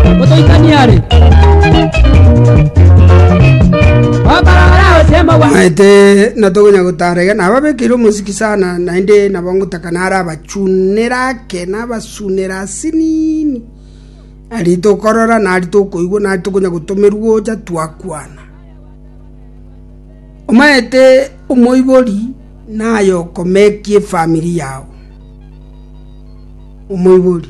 Motoitanie are. Okorora osemo bwa. maete natogonya gotara iga nababekeire omosiki sana naende nabo ngotaka nara abachunere ake nabasunere asinini ari tokorora nari tokoigwa nari tokonya gotomerwa ocha twakwana omaete omoibori naye okomekia efamiri yao omoibori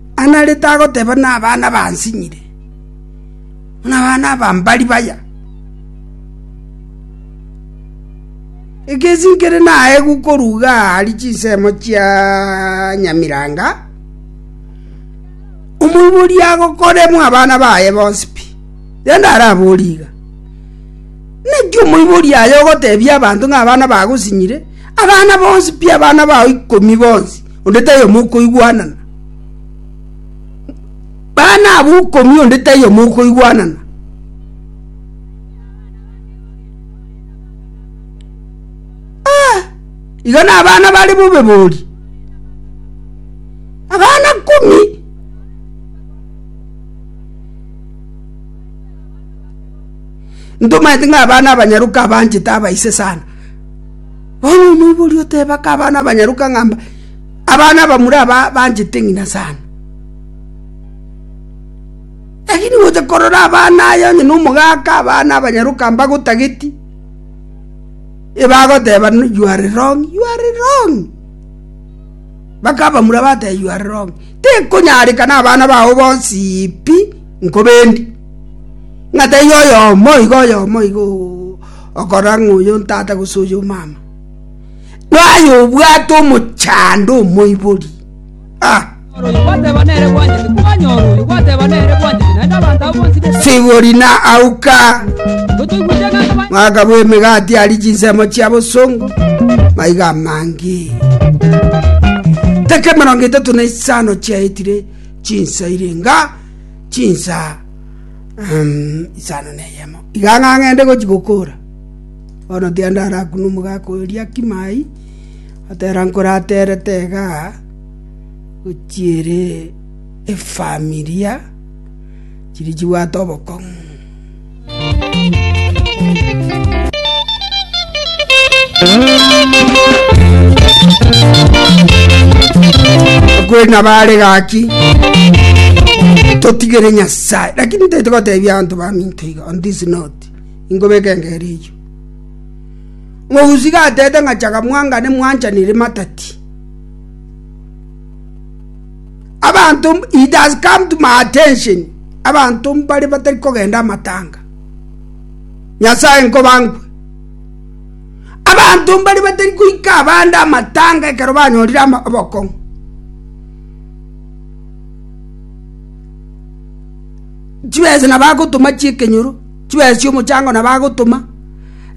Anarete agoteba nabana bansinyire, ng'a abana aba mbari baya. Egesi nkere naegwe korwa iga aa aria chinsemo chia nyamiranga, omoibori agokoremwa abana baye bonsi pi. Rende araborie iga, Naki omoibori aye ogotebia abanto ng'a abana bago sinyire? Abana bonsi pi abana bao ikomi bonsi. onde taiyo mokoigwanana, bana abo ikomi onde taiyo mokoigwanana. Aah, iga nabana bare bobebori, abana komi. Ntomanyete ng'a abana abanyaroka abanchete abaise sana. Onye omoibori oteebake abana abanyaroka ng'a abana abamura aba banchete ng'ina sana, lakini gocha korora abana aya onye nomogaaka abana abanyaroka mbagotageti, ebagoteeba you are wrong, you are wrong. Mpaka abamura bateba you are wrong. Tekonyarekana abana bao bonsi pi nkobendi, ng'a taiyo oyomo iga oyomo iga oo. Okorora ng'a oy'ontata gose oy'omama naye obwate omochando omoibori. Sigori na auka mwaka bw'emegati ari chinsemo chia bosongo maiga amange teke mirongo etato na isano chiaetire chinsa irenga chinsa isano na eyemo. Iga ng'a ng'ende gochia gokora, bono tiende ara akunwe omogaka oria kimai, atera nkore aterete iga gochia ere efamilia chiria chibwate obokong'u. Okweri nabo are gaki, totigere Nyasa. Sae, lakini ntaite gotebia abanto baminto iga on this note, inkobeka engero eyio. Mogusi iga atete ng'a chaka mwangane mwanchanire matati. Abanto, it has come to my attention, abanto mbare batari kogenda amatanga. Nyasae nkobankwe. Abanto mbare batari koika abande amatanga ekero banyorire ama- obokong'u. Chibese nabagotoma chi'ekenyoro, chibese chi'omochango nabagotoma,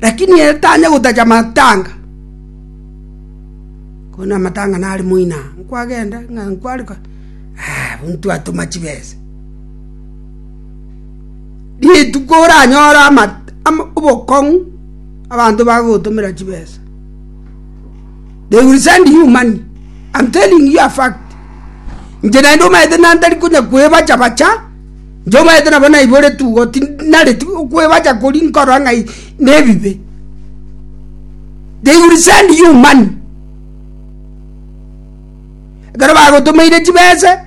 lakini ere tanya gotacha matanga. Konya amatanga nare moino aa, nkwagenda ng'a nkwarikwa, aah ntwatoma chibese. Rituko oranyore ama ama obokong'u abanto bagogotomera chibesa. They will send you money. I'm telling you a fact. Inche naende omanyete ng'a ntari konya kwebacha bacha, inche omanyete nabo naiboretu igo tinareti kwebacha koria nkorora ng'ai nebibe. They will send you money. Ekero bagotomeire chibese,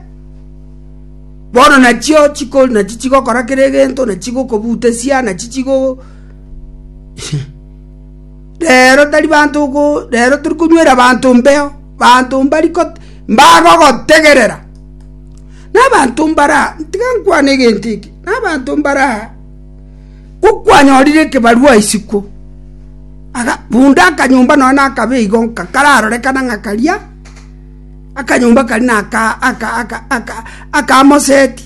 bono nachio chiko nachi chigokora kera egento, nachi chigokobutesia, nachi chigo. “Reero tari banto go, reero tori konywera banto mbeo, banto mbagogotegerera. Nabanto mbare aa, tiga nkwane egento eke, nabanto mbare aa, ko kwanyorire ekebarua isiko, bunde akanyomba nonya nakabe igo nka kararorekana ng'a karia, akanyomba karia naka aka aka aka akamoseti.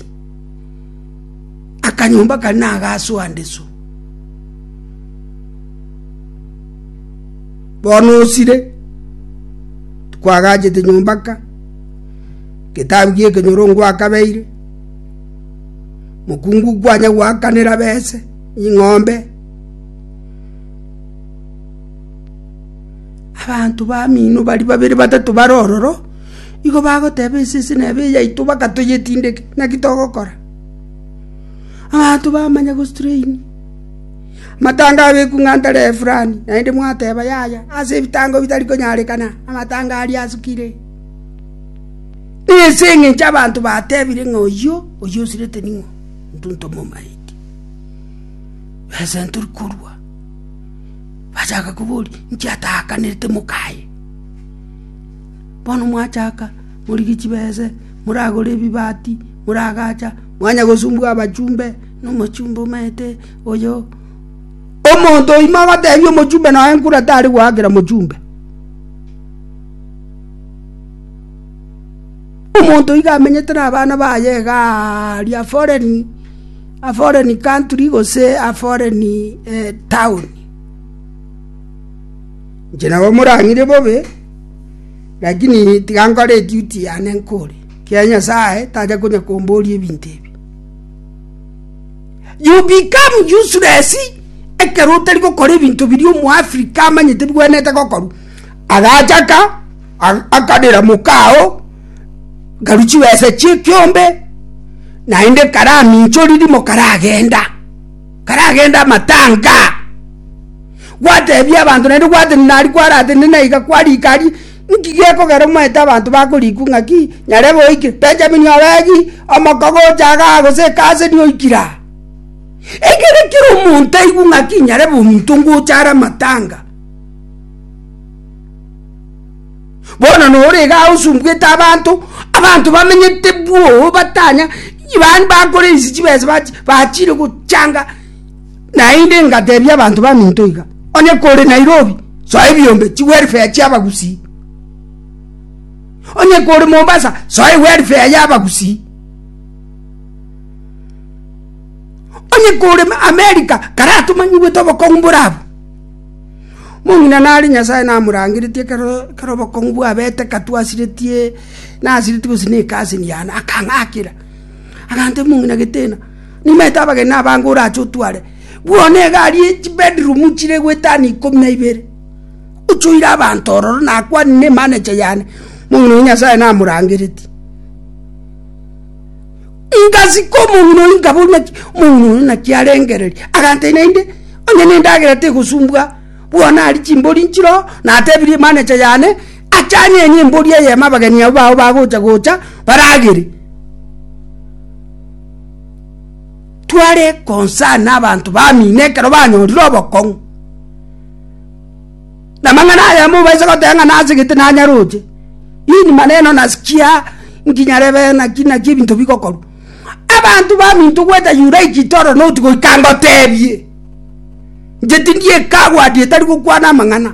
Akanyomba kare nagasoa ndesu. Bono osire, tikwagachete nyomba ka, getabu gi'ekenyoro ngwakabeire, mokungu kwanya gwakanera bese, ing'ombe, abanto bamino baria babere batato bare ororo. Igo bagoteba ense ense nebe eyaito, baka toyetindeke, naki togokora? Abanto bamanya gostrain amatanga abeku ng'a ntare efurani, naende mwateba yaya, ase ebitango bitari konyarekana, amatanga aria asukire. Ense eng'encho abanto batebire ng'a oyio, oyio osirete ning'o? Intwe ntomomaeti. Ense ntori korua, bachaka koboria, inche ataakanete moka aye. Bono mwachaka morigie chibese, moragore ebibati, moragacha, mwanya gosumbua abachumbe nomochumbe omanyete oyo. Omonto oimo agotebia omochumbe nonya nkure tari goakera mochumbe. Omonto iga amenyete na abana baye igaa aria foreign, a foreign country gose a foreign town. Inche nabo morang'ire bobe. Lakini tiga nkore eduti yane nkore, ekiagera Nyasae tacha konya komboria ebinto ebi. You become useless ekero otari gokora ebinto biri omoafrika amanyete bigwenerete gokorwa agachaka akadera mokao nkaru chibesa chie ekiombe naende karaminchoriri mokaragenda. karagende amatanga gwatebia abanto naende gwatebia nari kwaratende naiga kwarikari nki gekogera omanyete abanto bakorikwa ng'aki nyarebe oikire benjamini oregi omoko gocha igaa gose ekasi nigo oikire aa ekere kera omonto aigwe ng'aki nyarebe omonto ngocha are amatanga. Bono noro iga agosumbwete abanto, abanto bamenyete bwoo batanya, bani bakore ensi chibesa bachi, bachire gochanga, naende ngatebia abanto baminto iga, onye kore Nairobi, soa ebiombe chi welfare chia abagusii, onye kore Mombasa, soa ewelfare ya abagusii, onye kore America, karatomanyigwete obokong'u bore abwo. Omong'ina nare Nyasae namorangeretie ekero obokong'u bwabete katwa asiretie, nasiretie gose neka ase enyaana, akang'akera, agantebia omong'ina Getena, nimanyete abageni nabange orache otware buna egari ye chibedroom chire goetani ikomi na ibere, oche oire abanto ororo nakwane ne emanager yane. Omong'ina oyio Nyasae namorangeretie. Ngasika omong'ina oyio, nkaboria ng'aki omong'ina oyo naki arengereria. Agantebi, Naende onye nendagera tegosumbwa, buna aria chimbori nchire oo, natebirie manager yane ache anyenye embori eyemo abageni abwo bao bagocha gocha baragere. Tware concern abanto bamino ekero banyorire obokong'u. Namang'ana aya mobaise goteba ng'a nasegete nanyaroche, ini maneno nasikia nkinyarebe naki naki ebinto bigokorwa. Abanto baminto goeta Yuraiki toro noti goika ngotebie, inche tindi ekagwadi etari gokwana amang'ana.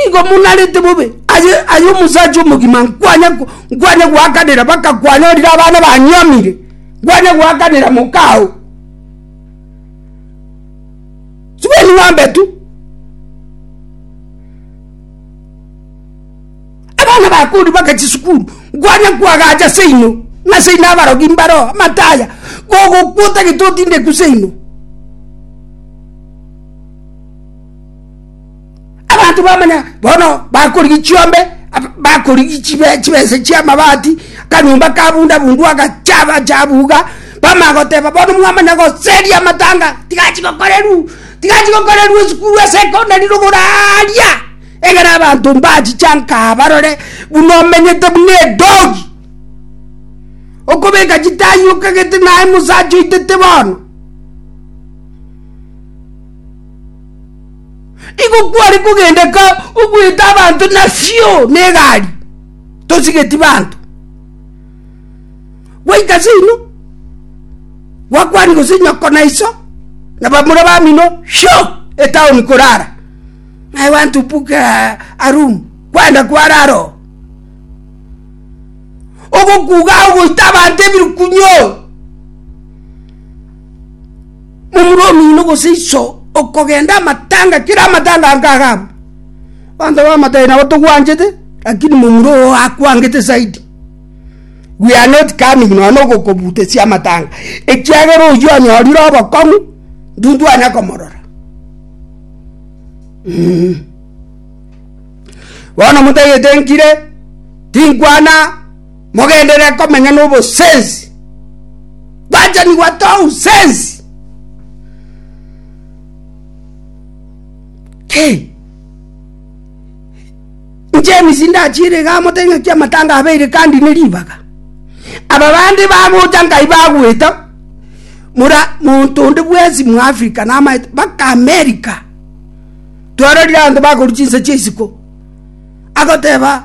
Igo monarete bobe aye aye omosacha omogima nkwanye nkwanye goakanera baka kwanyorire abana banyiomire, nkwanye goakanera mokao. Sibeni ng'ombe tu. Abana bakori baka chisukuru nkwaria kwagacha seino ng'a seino abarogi mbaro amataya gogokwa otagete otindeku seino Abanto bamanya bono bakorigia chiombe, bakorigia chibesa chi'amabati, akanyomba ka bunda bundu agachaba chabuga, bamanya goteba bono mwamanya goseria amatanga, tigachi gokorerwa, tigachi gokorerwa esukuru ase secondary rogoro aaria, egere abanto mbachichaanka aa barore buna omenyete buna edogi, okobeka chitaai okagete naye mosacha oitete bono. Igo kware kogenda ka ogoeta abanto na fio na egari tosigeti banto gwaika seino gwakwani gose nyoko na iso na bamura bamino fio etown korara I want to book a a room kwenda kwarara oo ogokuga ogoita abanto ebirukunyo. Momura omino gose iso okogenda amatanga kera amatanga ange agabwe. Abanto b'amatai nabo togwanchete, lakini momura oo akwangete zaidi. We are not coming nonya na ogokobutesia amatanga, ekiagera oyio onyorire obokong'u ndintwanya komorora. Mmmh. Bono motagete nkire, tinkwana. Mogenderere komenya nobosensi. Gwachanigwa tousensi. Kei. James ndachire ga motenya kia matanga abeire kandi ne ribaga. Aba bandi bagocha ngai bagweta mura muntu onde bwesi mu Africa na ama baka America. Twarorire anto bakoru chinsa chie isiko. Agoteba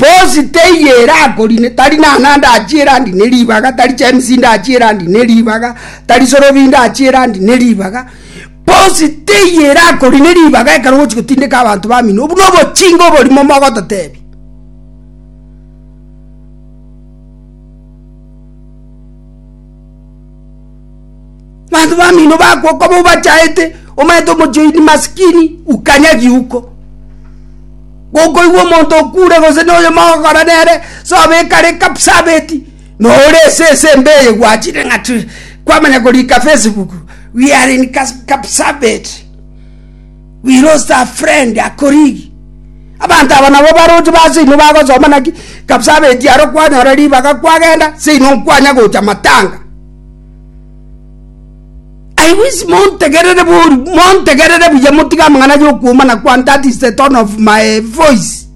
Bosi teiyo erakorine, tari Nana ndachie erandi ne ribaga, tari James ndachie erandi ne ribaga, tari Sorobi ndachie erandi ne ribaga, bosi teiyo erakorine ribaga ekero ogochi gotindeka abanto bamino, obwo na obochinga oborimo mogototebia. Banto bamino bakwo koba obachaete omanyete omochie oini masikini ukanyagi uko gokoigwa omonto okure gose noyo mogokora nere sobekare kapsabeti nore ase ese mbe eye gwachire ng'a kwamanya korika facebook we are in kapsabet. We lost a friend, a colleague. Abanto aba nabo baroche ba seino bagosoma naki kabisa abeti aro kwanyora ribaga kwagenda seino nkwanya gocha matanga. I wish montegerere bori montegerere buya motige amang'ana ya okuomana kwane that is the tone of my voice.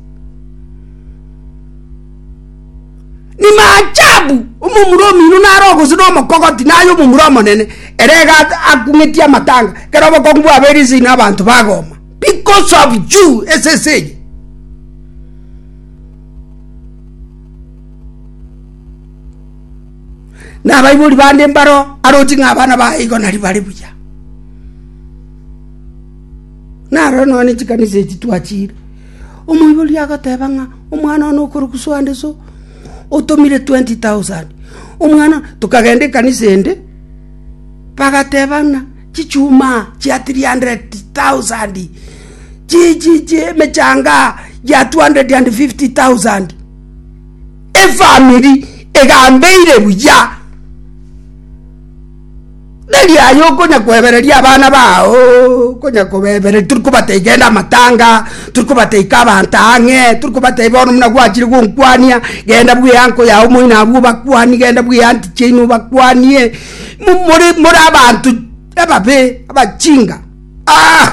Ni maachabu! Omomura omino nare ogose nomokogoti na ay'omomura omonene, ere iga akung'etie amatanga, ekero obokongu bwabeire inse ino abanto bagoma because of you, ase ense eye. Na abaibori bande mbaro aroti ng'a abana baye igo nari bare buya. Naro nonya chikanisa echi twachire. Omoibori agateba ng'a omwana one okorokwa so ande so, otomire twenti tausandi. Omwana one, tokagenda ekanisa ende, bagateba ng'a chichuma chia tiri handereti tausandi, emechanga ya tu handereti ande fifti tausandi. Efamiri egambeire buya. Tari aye okonyakwebereria abana bao, okonyakobebereria tori kobatebia genda amatanga, tori kobatebia ika abanto ang'e, tori kobatebia bono buna gwachire gonkwania, genda bwea enko yago moino abwo obakwani, genda bwea anti chiaino obakwanie, mo more more abanto ababe, abachinga, aah.